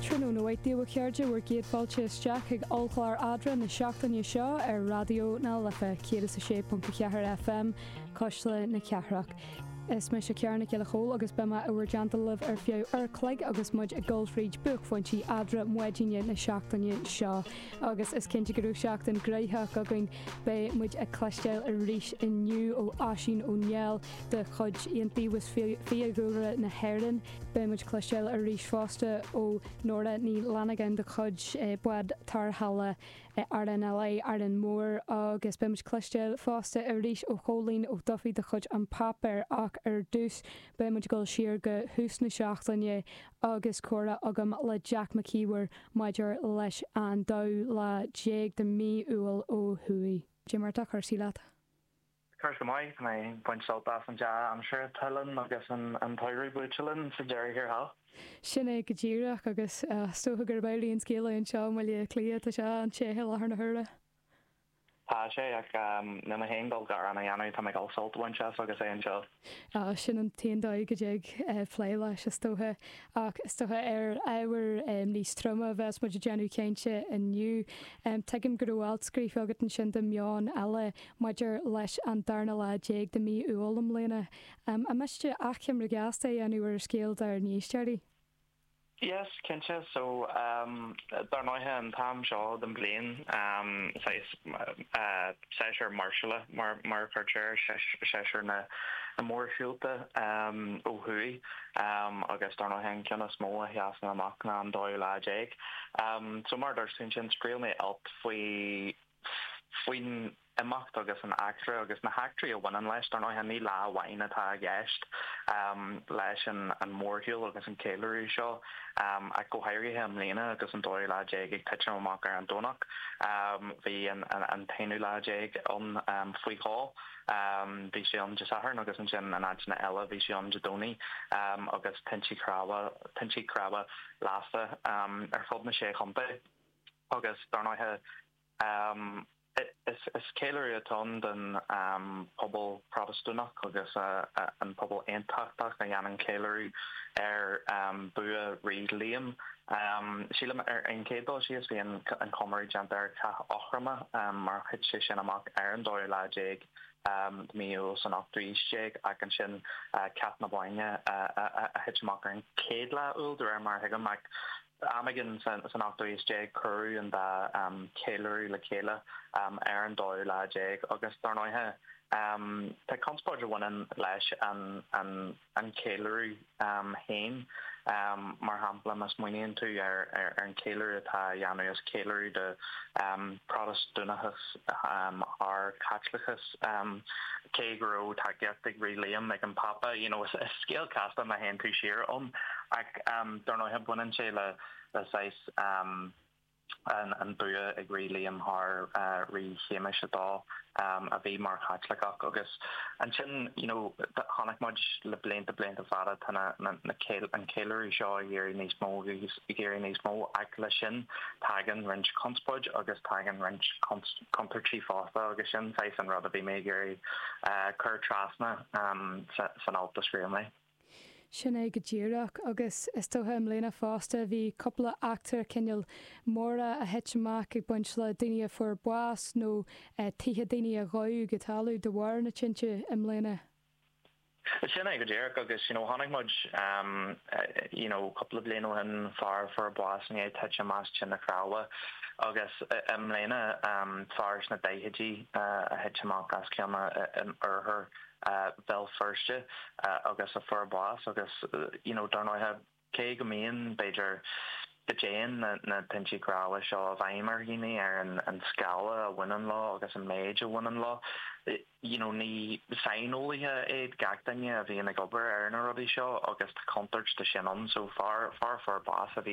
Tráthnóna mhaith daoibh a chairde, bhur gcéad fáilte isteach chuig ollchlár Adra na seachtaine seo ar Raidió na Life 106.4 FM, Cuisle na Cathrach. Is mise Ciara Nic Giolla Chomhaill agus beidh mé i bhur dteannta libh ar feadh uair a chloig agus muid ag dul fríd buaicphointí Adra maidine na seachtaine seo. Agus is cinnte go raibh seachtain ghnóthach againn, beidh muid ag cloisteáil arís inniu ó Oisín Ó Néill de chuid Iontaobhas Fiadhúlra na hÉireann, Beidh muid cloisteáil arís fosta ó Nóra Ní Fhlannagáin de chuid Bád Tarrthála RNLI, Árainn Mhór, agus beidh muid cloisteáil fosta arís ó Chóilín Ó Dufaigh de chuid An Páipéar ach ar dtús beidh muid ag dul siar go hús na seachtaine agus comhrá agam le Jack Mac Íomhair maidir leis an 12 lá de mhí Iúil ó thuaidh. Cad é mar atá cúrsaí leat. Cúrsaí maith, tá mé ag baint sult as an dea aimsir a tuilim agus an samhradh buailte linn sa deireadh thiar thall. Sin é go díreach agus is dócha gurb amhlaidh an scéal é anseo i mBaile Átha Cliath, tá sé an-te i láthair na huaire. Tá sé, ach níl mé féin dul gearán a dhéanamh, tá mé ag dul sult a bhaint as agus é anseo. Sin an t-aon dóigh le déileáil leis, is dócha. Ach is dócha, ar ábhar níos troime a bheas muid ag déanamh cainte inniu. Tuigim go raibh alt scríofa agat ansin do Meon Eile maidir leis an darna lá déag de mhí Iúil i mbliana. An miste achoimre ghasta a dhéanamh ar an scéal dár n-éisteoirí? Yes, cinnte, so dar ndóighe an t-am seo den bhliain saghas séasúr máirseála mar mar a chuirtear é, séasúr na na mórshiúlta ó thuaidh agus dar ndóighe an ceann is mó a sheasann amach ná an 12 lá. So mar a dúirt tú ansin, scríobh mé alt faoi. faoin imeacht agus an eachtra agus na heachtraí a bhaineann leis. Dar ndóighe, ní lá amháin atá i gceist leis an mórshiúl agus an ceiliúradh seo, ach go háirithe i mbliana agus an dóú lá déag ag titim amach ar an Domhnach. Bhí an t-aonú lá déag ann faoi dhó, bhí sé ann Dé Sathairn agus ansin in áiteanna eile bhí sé ann Dé Domhnaigh agus tinte cnámha lasta ar fud na sé chontae. agus dar ndóighe is ceiliúradh atá ann don pobal Protastúnach agus an pobal Aontachtach a dhéanann ceiliúradh ar bua Rí Liam. Sílim ar an chéad dul síos bhí an comóradh déanta ar Chath Eachroma mar a thit sé sin amach ar an dóú lá déag de mhí Iúil san ochtú aois déag ach ansin Cath na Bóinne a thit amach ar an chéad lá Iúil de réir mar a thuigim ach Am éigin san ochtú aois déag cuireadh an dá cheiliúradh le chéile ar an dóú lá déag agus dar ndóighe tá conspóid a bhaineann leis an cheiliúradh féin. Mar shampla má smaoiníonn tú ar an cheiliúradh atá á dhéanamh is ceiliúradh do Protastúnachas thar Caitliceachas. Cé go raibh tacaíocht ag Rí Liam ag an bPápa, you know, is scéal casta má théann tú siar ann. Ach dar ndóighe baineann sé le saghas an bua ag Rí Liam thar Rí Shéamais a Dó a bhí mar Chaitliceach agus ansin, you know, chonaic muid le blianta, blianta fada tá an ceiliúradh seo ag éirí níos mó agus ag éirí níos mó ach leis sin tagann roinnt conspóid agus tagann roinnt contúirtí fosta agus sin saghas an rud a bhí mé ag iarraidh cur trasna san alt a scríobh mé. Sin é go díreach agus is dócha i mbliana fosta bhí cúpla eachtra cineál móra a thit amach ag baint le daoine a fuair bás nó tithe daoine a dódh go talamh de bharr na tinte i mbliana. Sin é go díreach agus you know chonaic muid ehm you know cúpla bliain ó shin fear fuair bás i ndiaidh titim amach as tine chnámha agus i mbliana ehm fear sna daichidí a thit amach as ceann in oirthear Bhéal Feirste agus a fuair bás agus you know dar ndóighe Cé go mbíonn, b'fhéidir, go dtéann na tinte cnámha seo i bhfeidhm ar dhaoine ar an scála a bhaineann leo agus an méid a bhaineann leo, you know, ní saineolaithe iad gach duine a bhíonn ag obair ar na rudaí seo agus tá contúirt de sin ann. So, an fear a fuair bás a bhí.